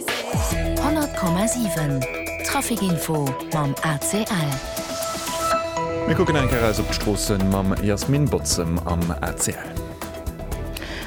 100,7 Trafic info mam ACL. Mir kucken nach eng Kéier eis op d'Stroossen mam Jasmin Botzem am ACL.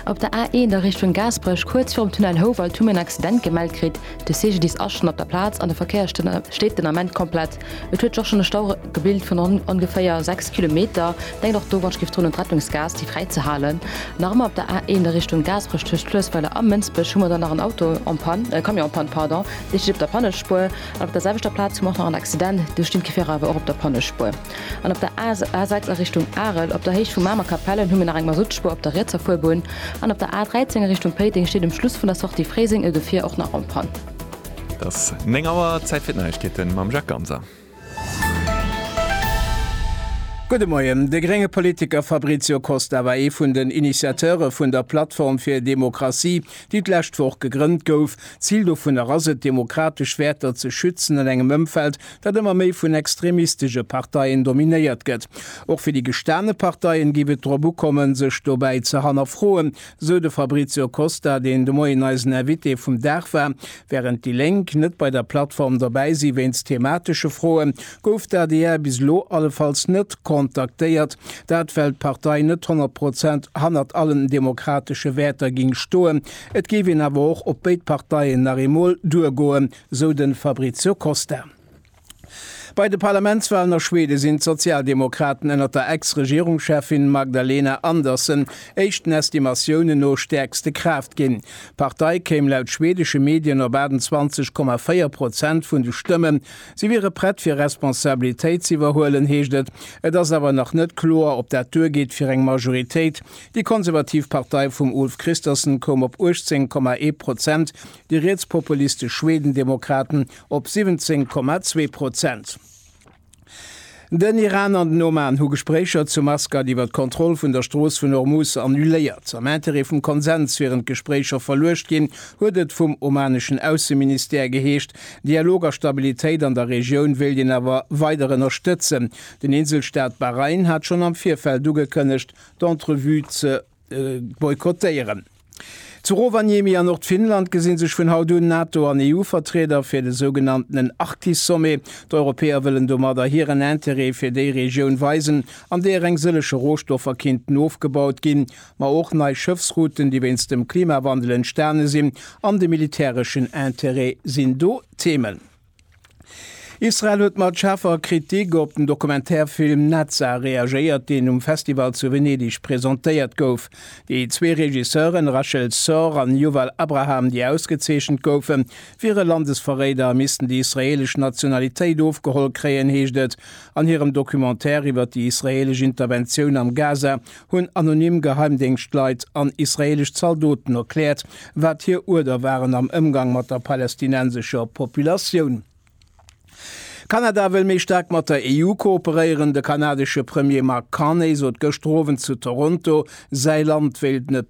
Op der A1 a Richtung Gaasperech, kuerz virum Tunnel Houwald, hu mir en Accident gemellt kritt. De CGDIS ass schonn op der Plaz an de Verkéier steet den Ament komplett. Et huet sech och schonn e Stau gebilt vun ongeféier 6 Kilometer. Denkt och do, wann ech giff droen un d'Rettungsgaass, déi fräi ze halen. Nach ëmmer op der A1 a Richtung Gaasperech tëscht Fluessweiler a Mënsbech hu mer dann nach en Auto en panne, e Camion en panne, pardon, dee steet op der Pannespuer. An op der selwechter Plaz hu mer och nach en Accident, do stinn d'Gefierer awer och op der Pannespuer. An op der A6 a Richtung Arel op der Héicht vu Mamer Kapellen hu mir nach eng Masuttspuer op der rietser Fuerbunn. An op der A13 a Richtung Péiteng steet um Schluss vun der Sortie Fréiseng e Gefier och nach en panne. Et ass 9 Auer, Zäit fir d'Neiegkeete mam Jacques Ganser. Gudde Moien. De grénge Politiker Fabrizio Costa war ee vun den Initiateure vun der Plattform fir Demokratie, déi d'lescht Woch gegrënnt gouf. D'Zil dovunner ass et, demokratesch Wäerter ze schützen an engem Ëmfeld, dat ëmmer méi vun extremistesche Parteien dominéiert gëtt. Och fir déi gestane Parteien géif et drop ukommen, sech dobäi ze hannerfroen, Sou de Fabrizio Costa, deen de Moien eisen Invité vum Dag war. Wärend déi Lénk net bei der Plattform dobäi si wéinst thematesche Froe, gouf d'ADR bis elo allefalls net kontaktéiert. Dat well d'Partei net 100 Prozent hannert allen demokratesche Wäerter géing stoen. Et géif een awer och op béid Parteien nach eemol duergoen, sou de Fabrizio Costa. Bei de Parlamentswalen a Schweden sinn d'Sozialdemokraten ënnert der Ex-Regierungscheffin Magdalena Andersson éischten Estimatiounen no stäerkste Kraaft ginn. D'Partei kéim laut schwedesche Medien op 28,4 Prozent vun de Stëmmen. Si wiere prett fir Responsabilitéit ze iwwerhuelen, heescht et. Et ass awer nach net kloer, ob dat duergeet fir eng Majoritéit. Déi konservativ Partei vum Ulf Kristersson koum op 18,1 Prozent, déi rietspopulistesch Schwedendemokraten op 17,2 Prozent. Den Iran an den Oman hu Gespréicher zu Maskat iwwer d'Kontroll vun der Strooss vun Hormuz annuléiert. Am Interêt vum Konsens wieren d'Gespréicher verluecht ginn, huet et vum omaneschen Ausseministère geheescht. Dialog a Stabilitéit an der Regioun wéilt een awer weider ënnerstëtzen. Den Inselstaat Bahrain hat schonn am Virfeld ugekënnegt, d'Entrevue ze boykottéieren. Zu Rovaniemi a Nordfinnland gesi sech vun haut un NATO an EU-Vertrieder fir de sougenanntenen Arktis-Sommet. D'Europäer wëllen domadder hiren Interêt fir déi Regioun weisen, an deeër eng sëllege Rohstoffer kinnten ofgebaut ginn, ma och nei Schëffsrouten, déi wéinst dem Klimawandel entstane sinn, an de militäreschen Interêt sinn do Themen. Israel huet mat schaarfer Kritik op den Dokumentärfilm Naza reagéiert, deen um Festival zu Venedeg presentéiert gouf. Déi zwee Regisseuren, Rachel Sorr an Yuval Abraham, déi ausgezeechent goufen, wiere Landesverréider a missten déi israeelesch Nationalitéit ofgeholl kréien, heescht et an hirem Documentaire iwwer déi israeelesch Interventioun am Gaza hunn anonym Geheimdéngschtleit an israeelesch Zaldoten erkläert, wat hir Uerder waren am Ëmgang mat der palästinensescher Populatioun. Kanada wëll méi staark mat der EU kooperéieren. De kanadesche Premier Mark Carney sot gëschter Owend zu Toronto, säi Land wéilt net